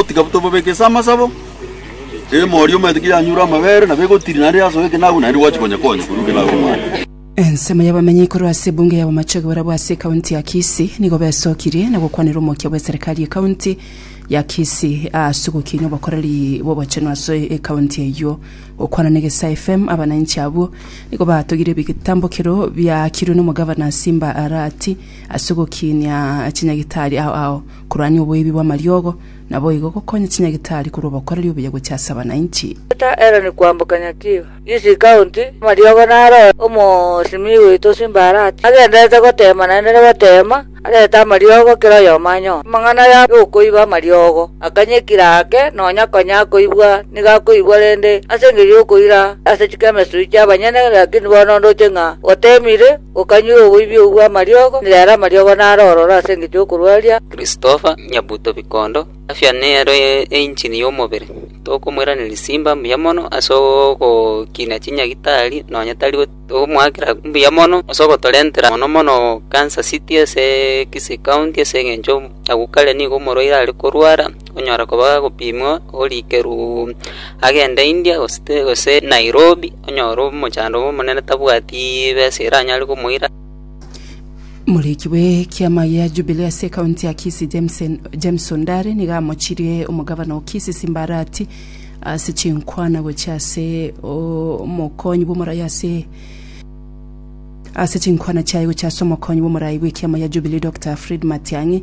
Tiga tobabeke ase amasabo, emori omanyete ki yanyure amabere, nabo egotiri naende yasoa ekenagu, naende gwachi konya konya korwa ekenagu omwana. Ensemo y'abamenyi korwa ase ebunge ya bomache oborabwo ase ekaunti ya Kisii nigo besokirie na gokwanera omokia bw'eserekari ekaunti ya Kisii aase ogokinia obokoreri bw'obochenu aso ekaunti eyio. Gokwana na Egesae FM, abananchi abwo nigo batogire ebitambokero biaakirwe nomogavana Simba Arati ase ogokinia chinyagitari ao ao Korwanya oboibi bw'amariogo, naboigo gokonya chinyagitari korwa obokoreri obuya gochia ase abananchi. Geta Ellen kwamboka Nyakiwa, Kisii County, amariogo naroe omosimii oito Simbarati agenderete goteema naende nagoteema arete amariogo kera oyomo anyore amang'ana ya yokoiba amariogo akanyekire ake nonya konya akoibwa niga akoibwa rende ase engerio yokoira ase chikemesuri chiabanyene lakini bono ndoche ng'a otemire Gokanyure oboibi obwo amariogo, nere amariogo naro ororo ase engecho y'okorwaria. Christopher Nyabuto Bikondo, Afya nero engine y'omobere. Tokomoiraneria simba mbuya mono ase ogokina chinyagitari nonya tari tokomoakera mbuya mono ase ogotorentera mono mono Kansas City ase Kisii County ase engencho agwo kare nigo omorwaire are korwara. Onyare koba agopimwa orikerwe agende India gose Nairobi onyore omochando obo omonene tabwati besa eranyare komoira. Omoriki bwe ekiama gia Jubilee ase ekaunti ya Kisii James Ondare nigo amochirie omogavana o Kisii Simba Arati ase chinkwana gochia ase omokonyi bw'omorai ase chinkwana chiaye gochia ase omokonyi bw'omorai bw'ekiama gia Jubilee Doctor Fred Matiang'i.